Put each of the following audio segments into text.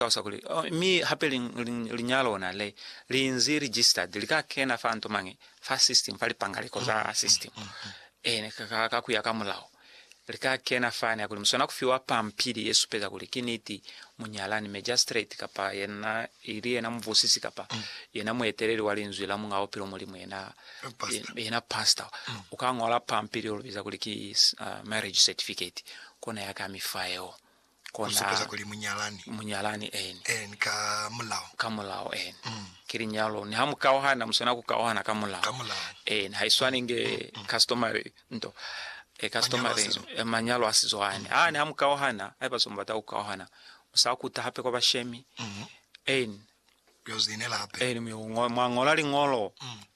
Talusa kuli, Mi hape liña lona le li nzi registered, li ka kena fa nto mañi, fa system, fa lipangaliko za system. Eena, ka, ka kuya ka mulao, li ka kena fani, hakuli muswana kufiwa pampili ye supeza kuli ki niti munyalani, magistrate, kapa yena, ili yena mubusisi, kapa yena mueteleli wa Linzwi la Muñ'a Bupilo, Mulimu, yena, yena pastor, u ka ñola pampili yo lu biza kuli ki, uh, marriage certificate, kona ya ka mi fa yeo. Ku supeza kuli munyalani. Munyalani, eeni. Eeni, ka mulao. Ka mulao, eeni. Mm. Ki linyalo. Niha mu kauhana, mu swana ku kauhana ka mulao. Ka mulao. Eeni, ha i swani nge customary nto. E, customary. Manyalo a sizo. E, manyalo a sizo ani. Ha, niha mu kauhana, haiba zwa mu bata ku kauhana, mu sa kuta hape kwa bashemi. Mm. Eeni. Ku yo zinela hape. Eeni, mu yo ngo, mwa ngola liñolo. Mm.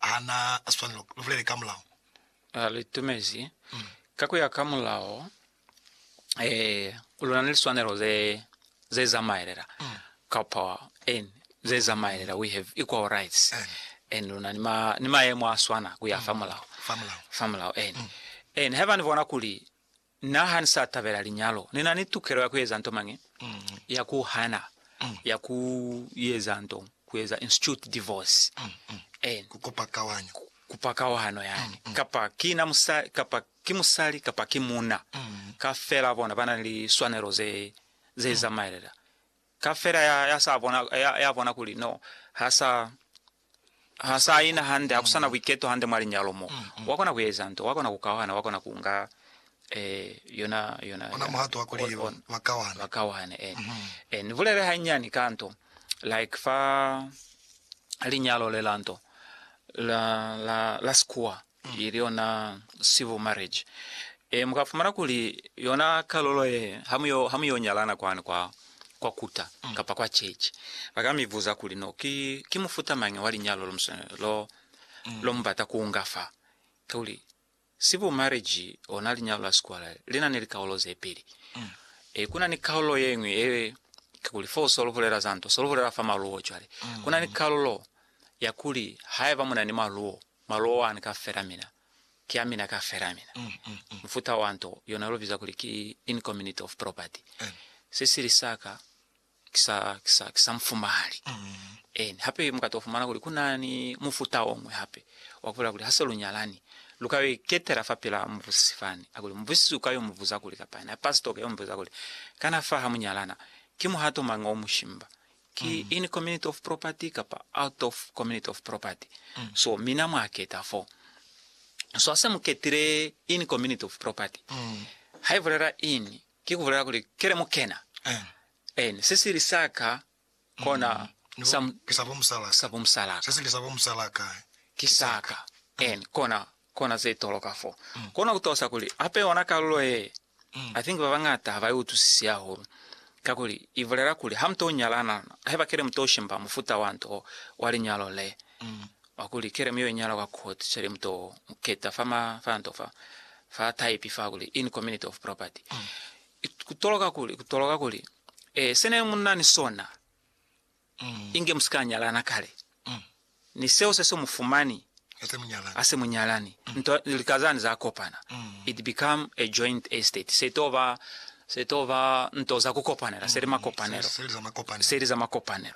Ha na swanelo. Lu bulele ka mulao. Ha lu itumezi. Ka ku ya ka mulao, lu na ni liswanelo ze, ze zamaelela, kapa en, ze zamaelela, we have equal rights, en lu na ni ma, ni maemo a swana ku ya fa mulao, fa mulao, fa mulao, en, en haiba ni bona kuli Na ha ni sa tabela linyalo, ni na ni tukelo ya ku eza nto mañi? Ya ku hana, ya ku eza nto, ku eza institute divorce, eeni, Ku kupa kawanyo. kupa kawahano yani, kapa ki na musa, kapa ki musali kapa ki muna, kafela bona ba na li swanelo ze, ze zamaelela Ka fela ya, ya sa bona, ya, ya bona kuli, no, ha sa, ha sa ina hande, ha ku sa na buiketo hande mwa linyalo mo. Wa kona ku eza nto, wa kona ku kauhana, wa kona ku nga, eh, yona, yona, Ona muhato wa kuli on, on, ba kauhane. ba kauhane, en. Eh, ni bulele hanyinyani ka nto, like fa linyalo le la nto, la, la, la Sikuwa. ili yona civil marriage e, mukafumana kuli yona kalulo ye hamuyo hamuyo nyalana kwani kwa kwa kuta mm. kapa kwa church bakamivuza kuli no ki ki mufuta mangi wa linyalo lo lo mm. lo mubata kuunga fa kuli civil marriage ona linyalo la sikwala lina ne likaulo ze peli mm. e kuna ni kaulo yengwe e kuli fo solo hulela zanto solo hulela fa maluo chwale mm. kuna ni kaulo ya kuli haiba muna ni maluo Malo one kafela mina ki a mina kafela mina. Mufuta wa nto yona lu biza kuli ki incommunity of property. Sisili sa ka ki sa, ki sa, ki sa mufumahali. Eeni. Hape muka to fumana kuli ku na ni mufuta o ñwi hape wa ku bulela kuli ha se lu nyalani, lu ka yo iketela fa pila mubusisi fani. A kuli, Mubusisi u ka yo mu buza kuli, kapa na pastor u ka yo mu buza kuli, Kana fa ha mu nyalana, ki muhato mañi o mu shimba? ki in community of property kapa out of community of property so mina mwa keta fo so hase mu ketile in community of property ha ibulela in ki kubulela kuli kele mu kena and se sili sa ka kona sa sabo musalaka se sili sabo musalaka ki sa ka and kona kona ze toloka fo kona kutosa kuli hape yona kalulo ye I think babañata ha ba i utwisisi hahulu, kakuli i bulela kuli ha mu to nyalana, haiba kele mu to shimba mufuta wa nto wa linyalo le, wa kuli kele mu yo inyala kwa court, cwale mu to keta fa ma, fa nto fa, fa type fa kuli in community of property. Ku toloka kuli, ku toloka kuli, eh, se ne mu na ni sona. Inge musika nyalana kale ni seo se so mufumani hase munyalani. Nto ni lika zani za kopana. It become a joint estate. Se to ba, se to ba nto za kukopanela. Se li makopanelo. Se li za makopanelo.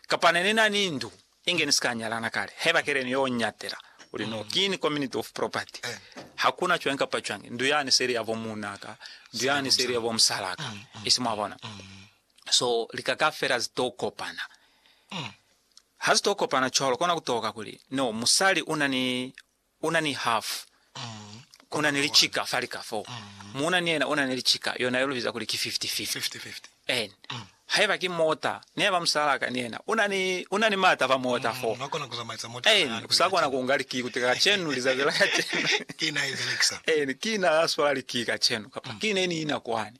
Kapa ne ni na ni ndu, inge ni sika nyalana kale. Haiba kele ni yo nyatela kuli no, kini community of property. Hakuna cwañi kapa cwañi. Ndu yani se li ya bo muunaka. Ndu yani se li ya bo musalaka. Isi mwabona? So lika kaufela zi to kopana. Ha zi to kopana cwalo, kona ku toka kuli, no, musali una ni, una ni half, una ni licika fa lika fo. Muuna ni yena una ni licika, yona yo lu biza kuli ki fifty-fifty. En, haiba ki mota, ni haiba musalaa ka ni yena una ni, una ni maata fa mota fo. En, u sa kona ku nga likii kuti kacenu, lizazi la kacenu, en, ki na ya swala likii kacenu, kapa ki ne ni ina kwani.